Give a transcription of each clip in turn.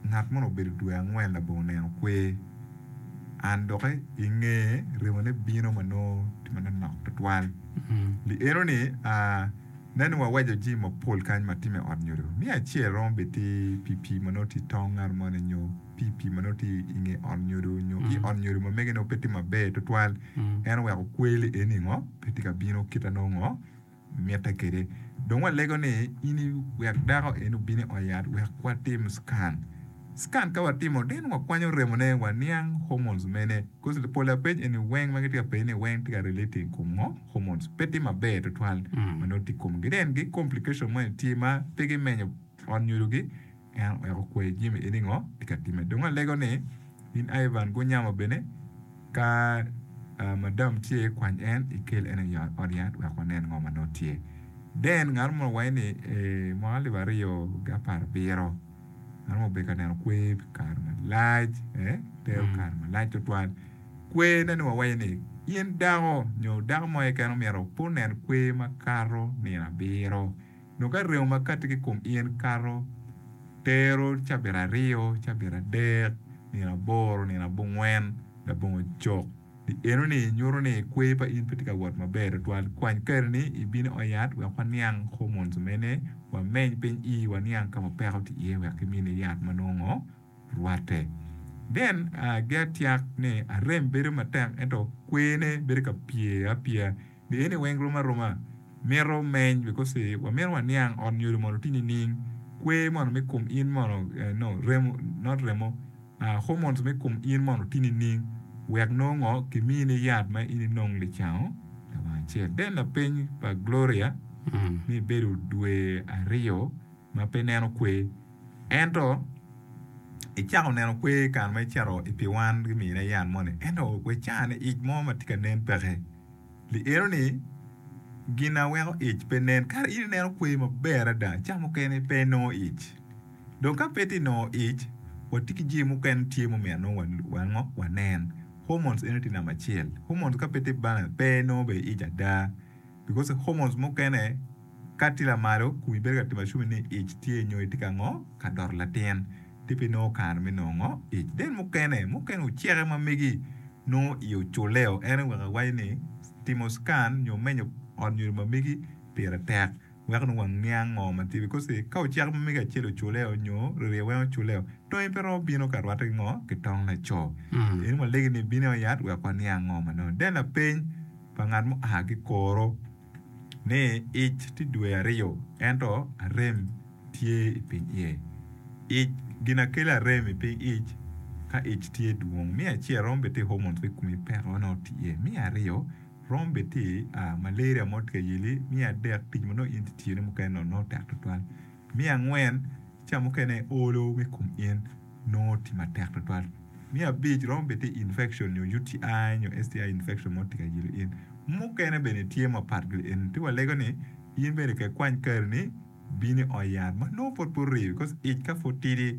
Ngat mono obedo dwe angwen labongo neno kwer, an doki i nge remone bino ma nongo tye ma nonok twatwal. Li eno ni, aa, nen ni waweco jimi mapol kany ma tye me ot nyodo. Miya acel romo bed tye pi pii ma nongo tye i tong ngat moni nyo pi pii ma nongo tye i nge ot nyodo nyo i ot nyodo ma mege nongo pe tye maber twatwal. En oweko kwer li eni ngo pe tye ka bino kit ma nongo ngo. mitte kede. Dong walego ni in i wek dako en obin i ot yat wek watim scan. Scan ka watimo then wakwanyo remo ne waniang hormones mene coz pol apeny eni weng ma gitye ka penyo ni weng tye ka relating i kom ngo hormones pe tye maber tutwal ma nongo tye i komgi then gi complication moni tye ma pe gimenyo ot nyodo gi En wek okwer jami eni ngo i ka time. Dong alego ni in Ivan gunyamo bene ka uh, madam tye kwany en ikel en i ot yat wek wanen ngo ma nongo tye. Then ngat mo wanyi ni e, mwaka alip aryo gi apar abiro ngat mo obedo ka neno kwer kare malac eh, tero mm. kare malac tutwal kwer ne ni wawanyi ni in dako nyo dako mo eken omyero opun nen kwer makato nino abiro Nyo ka remo ma katti ki i kom in kato tero cabit aryo, cabit adek, nino aboro, nino abongwen, labongo cok, di enoni nyuto ni kwer pa in pe tye ka wot maber tutwal. Kwany kare-ni ibin i ot yat wek waniang hormones mene, wameny piny ii waniang ka ma peko tye iye wek kimini yat ma nongo rwatte. Then, gi atyak ni arem bedo matek ento kwene bedo ka pye apya. Pien i weng rom aroma mito meny wi kose wamito waniang ot nyodo mono ti nining kwe mono me kom in mono no remo not remo ah hormones me kom in mono ti nining wek nongo ngo ki mi ni yat ma in inong licango lawang acel den lapeny pa gloria ni bedo dwe ariyo ma pe neno kwe ento i cako neno kwe kare ma i cito i piwan gi mine yat moni ento we cani ic mo ma ti ka nen peke. Lielo ni, Gin a weko ic pe nen. Kara in ineno kweyo maber ada, ca mukene pe inongo ic. Dong ka pe tye nongo ic, watye ki jami mukene ma tye ma omyero wanongo wanen. Hormones eno tye namba acel. Hormones ka pe tye balance, pe inongo bene ic ada. Because hormones mukene ka tye lamalo, komi bedo ka timo assume ni ic tye nyo itye ka ngo? Ka doto latin. Ti pi nongo kare me nongo ic. Den mukene, mukene oceke ma megi nongo i oculeo en aye wek awaco ni timo scan nyo menyo ot nyodo ma megi pire tek wek nongo waniang ngo ma tye because ka ocek ma megi acel oculeo nyo ririya weng oculeo tongi pe romo bino ka rwate ki ngo ki tong laco. Eni walegi ni bino yat wek waniang ngo ma nongo. Den lapeny pa ngat mu a ki koro. ni ic tye dwe aryo ento arem tye i piny iye. Ic ginakelo arem i piny ic ka ic tye dwong. Me acel romo bed tye hormones me kom i peko ma nongo tye iye. Me aryo romo bed tye malaria mo tye ka yeli. Me adek tic ma nongo in itiyone mukene nongo tek tutwal. Me angwen, ca mukene olo me kom in nongo tye matek twatwal. Me abic, romo bed tye infection nyo UTI nyo STI infection mo tye ka yelo in. Mukene bene tye mapat ki eni. Ci walego ni in bene ke kwany kari ni bino i ot yat ma nongo pud pe oriyo because ic ka pud tidi.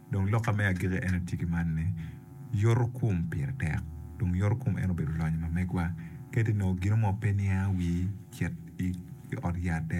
Dong lokka me agikki ene tye ki man ni, Yoto kom pire tek, dong yoto kom en obedo lonyo ma megwa. Kadi nongo gino mo pe niango wii, cit i ot yat dere.